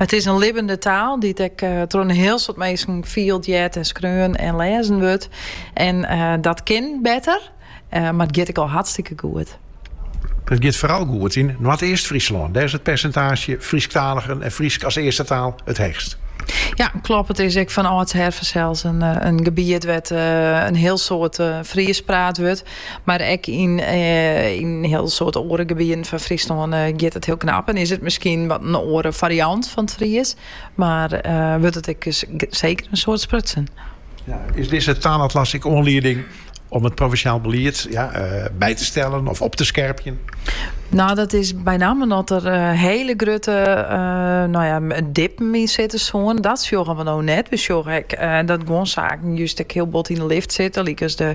It is in libbende taal dy't ek troch in hiel soad minsken fielt, heart en skreaun en lêzen wurdt. En dat kin better, mar it giet ek al hartstikke goed. It giet foaral goed yn Noardeast-Fryslân. Dêr is it persintaazje Frysktaaligen en Frysk as earste taal it heechst. Ja, kloppet. It is ek fan âldsher fansels in gebiet wêr't in hiel soad Frysk praat wurdt. Mar ek yn in hiel soad oare gebieten fan Fryslân giet it hiel knap en is it miskien wat in oare fariant fan it Fries, mar wurdt it ek seker in soad sprutsen. Is dizze taalatlas ek oanlieding om it provinsjaal belied by te stellen of op te skerpjen? No, dat is benammen at der hiele grutte, no ja, dippen yn sitte soene. Dat sjogge we no net. We sjogge ek dat guon saken just ek hiel bot yn 'e lift sitte, lykas de.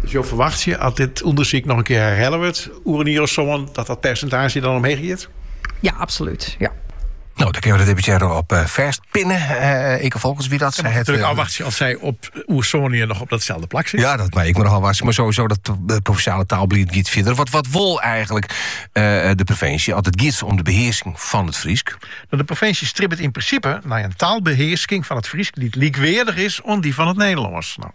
Dus jo ferwachtsje, as dit ûndersyk noch in kear herhelle wurdt oer in jier of sân, dat dat persentaazje dan omheech giet? Ja, absolút. Ja. No, dan kennen we de deputearre op eh, fastpinnen. Uh, eh, Eke Folkerts wie dat sa krekt. Natuerlik eh, ôfwachtsje oft sy oer sân jier noch op datselde plak sit. Ja, dat mar ik mar al was. Mar sowieso dat provinsjale taalbelied giet fierder. Wat, wat wol eigenlik de provinsje at it giet om de behearsking fan it Frysk? No, de provinsje stribbet yn prinsipe nei in taalbehearsking fan it Frysk dy't lykweardich is oan dy fan it Nederlânsk. No,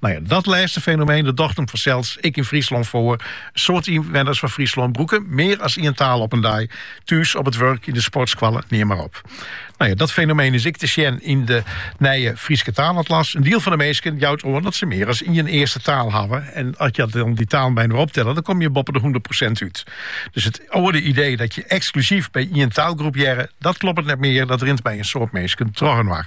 No ja, dat lêste fenomeen dat docht him fansels ek yn Fryslân foar. In soad ynwenners fan Fryslân brûke mear as ien taal op in dei. Thús, op it wurk, yn de sportskoalle, neam mar op. No ja, dat fenomeen is ek te sjen yn de nije Fryske taalatlas. In diel fan de minsken jout oan dat se mear as ien earste taal hawwe. En as je dan die talen by inoar optelle, dan kom je boppe de 100 prosint út. Dus it oude idee dat je eksklusyf by ien taalgroep hearre, dat kloppet net mear. Dat rint by in soad minsken troch inoar.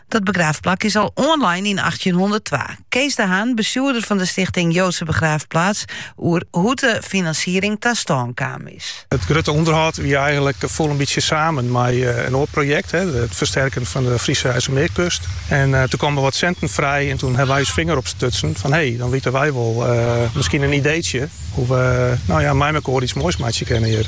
Dat begraafplak is al oanlein yn achttjinhûnderttwa. Kees de Haan, bestjoerder fan de stichting Joodse Begraafplaats, oer hoe't de finansiering ta stân kaam is. It grutte ûnderhâld wie eigenlik, foel in bytsje samen mei in oar projekt, it fersterken fan de Friese IJsselmeerkust. En toen kamen der wat sinten frij en toen hebben wy ús finger opstutsen fan hee, dan witte wy wol miskien in ideetsje hoe't we no ja mei mekoar iets moais meitsje kennen hjir.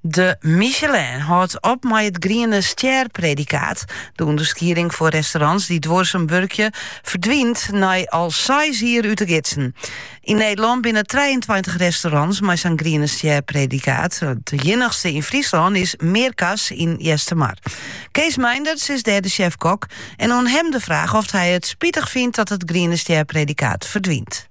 De Michelin hâldt op mei it Griene Stjerpredikaat. De ûnderskieding foar restaurants dy't duorsum wurkje, ferdwynt nei al seis jier út de gidsen. Yn Nederlân binne trijeentweintich restaurants mei sa'n Griene Stjerpredikaat. It iennichste yn Fryslân is Mearkas yn Eastermar. Kees Meinderts is dêr de sjef-kok en oan him de fraach oft hy it spitich fynt dat it Griene Stjerpredikaat ferdwynt.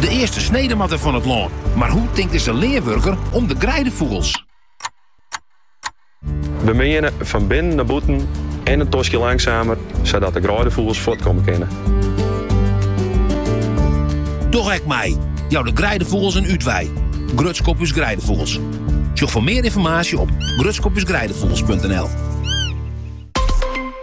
De earste snede moat der fan it lân, mar hoe tinkt dizze leanwurker om de greidefûgels? We meane fan binnen nei bûten en in toskje langsamer, sadat de greidefûgels fuortkomme kinne. Doch ek mei! Jou de greidefûgels in útwei. Grutsk op ús Greidefûgels. Sjoch foar mear ynformaasje op grutskopusgreidefugels.nl.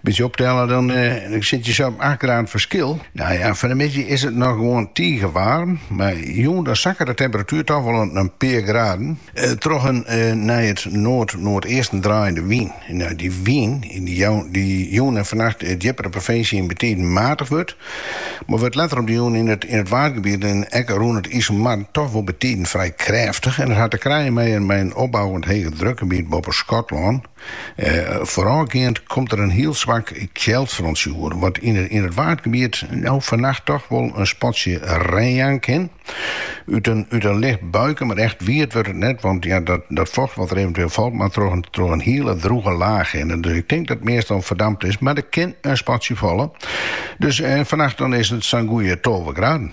Bytsje optelle, dan sit je sa op acht graden ferskil. Nou ja, fan de middei is it noch gewoan tige waarm, mar jûn dan sakke de temperatuer toch wol in pear graden. Troch in nei it noard-noardeasten draaiende wyn. Nou, dy wyn dy't jûn en fannacht djipper de provinsje yn betiden matich wurdt, mar wurdt letter op de jûn yn it Waadgebiet en ek rûn it Iselmar toch wol betiden frij krêftich. En dat hat te krijen mei in opbouwend hegedrukgebiet boppe Skotlân. Foarôfgeand komt der in hiel swak kjeldfrontsje oer, wat yn it Waadgebiet no fannacht toch wol in spatsje rein jaan kin. Ut in licht buike, mar echt wiet wurdt it net, want ja, dat focht wat der eventueel falt moat troch in hiele drûge laach hinne. Dus ik tink dat it measte al ferdampt is, mar it kin in spatsje falle. Dus fannacht dan is it sa'n goede tolve graden.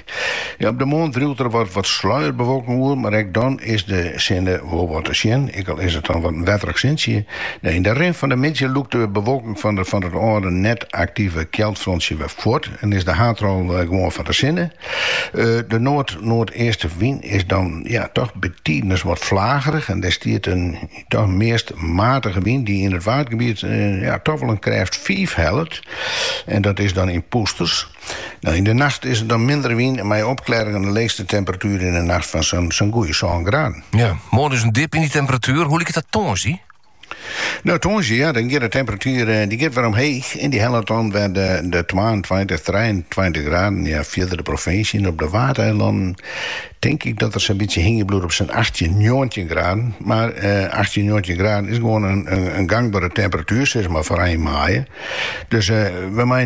Op de moarn driuwt der wat sluierbewolking oer, mar ek dan is de sinne wol wat te sjen, ek al is it dan wat in wetterich sintsje. Yn de rin fan de middei lûkt de bewolking fan it âlde net aktive kjeldfrontsje wer fuort en is de haadrol gewoan fan de sinne. De noard-noardeastewyn is dan toch betidens wat flagerich en der stiet in toch meast matige wyn dy't yn it Waadgebiet toch wol in krêft fiif hellet en dat is dan yn pûsters. Yn de nacht is it dan minder wyn en mei opklearringen, de leechste temperatuer yn de nacht fan sa'n goede sân graden. Ja, moarn dus in dip yn dy temperatuer. Hoe liket dat tongersdei? No tongersdei, ja, dan giet de temperatuer eh, die giet wer omheech en die hellet dan wer de, de 22, 23 graden, ja, fierder de provinsje yn, op de Waadeilannen. tink ik dat er sa'n bytsje hingje bliuwt op sa'n achttjin, njoggentjin graden. Mar achttjin, njoggentjin graden is gewoan in gangbere temperatuer, sis mar foar ein maaie. Dus we meie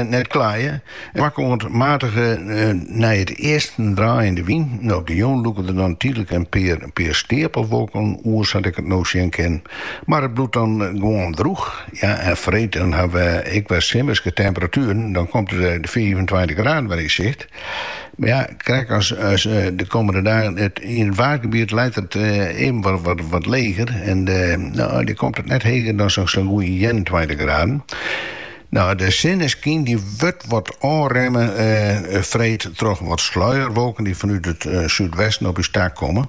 net klaaie. Swakke oant matige nei it easten draaiende wyn. Op de jûn lûke der dan tydlik in pear steapelwolken oer, sa't ik it no sjen kin. Mar it bliuwt dan gewoan drûch. Ja, en freed dan hawwe we ek wer simmerske temperatueren. Dan komt de fiifentweintich graden wer yn sicht. Mar ja, krekt as de kommende dagen. Yn it Waadgebiet leit it even wat leger en dêr komt it net heger dan sa'n goede ienentweintich graden. De sinneskyn dy wurdt wat ôfremme freed troch wat sluierwolken dy fanút it súdwesten op ús ta komme.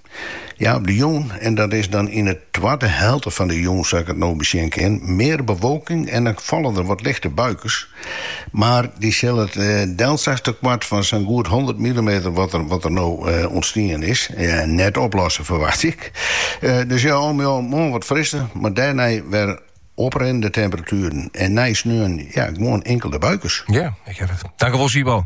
Ja, op de jûn, en dat is dan yn 'e twadde helte fan de jûn sa't ik it no besjen kin, mear bewolking en dan falle der wat lichte buikens. Mar dy sille it delslachtekoart fan sa'n goed honderd millimeter wat der no ûntstien is, net oplosse ferwacht ik. Dus ja, al mei al moarn wat frisser, mar dêrnei wer oprinnende temperatueren en nei sneon, ja, gewoan inkelde buikens. Ja, ik hear it. Dankjewol Sibo.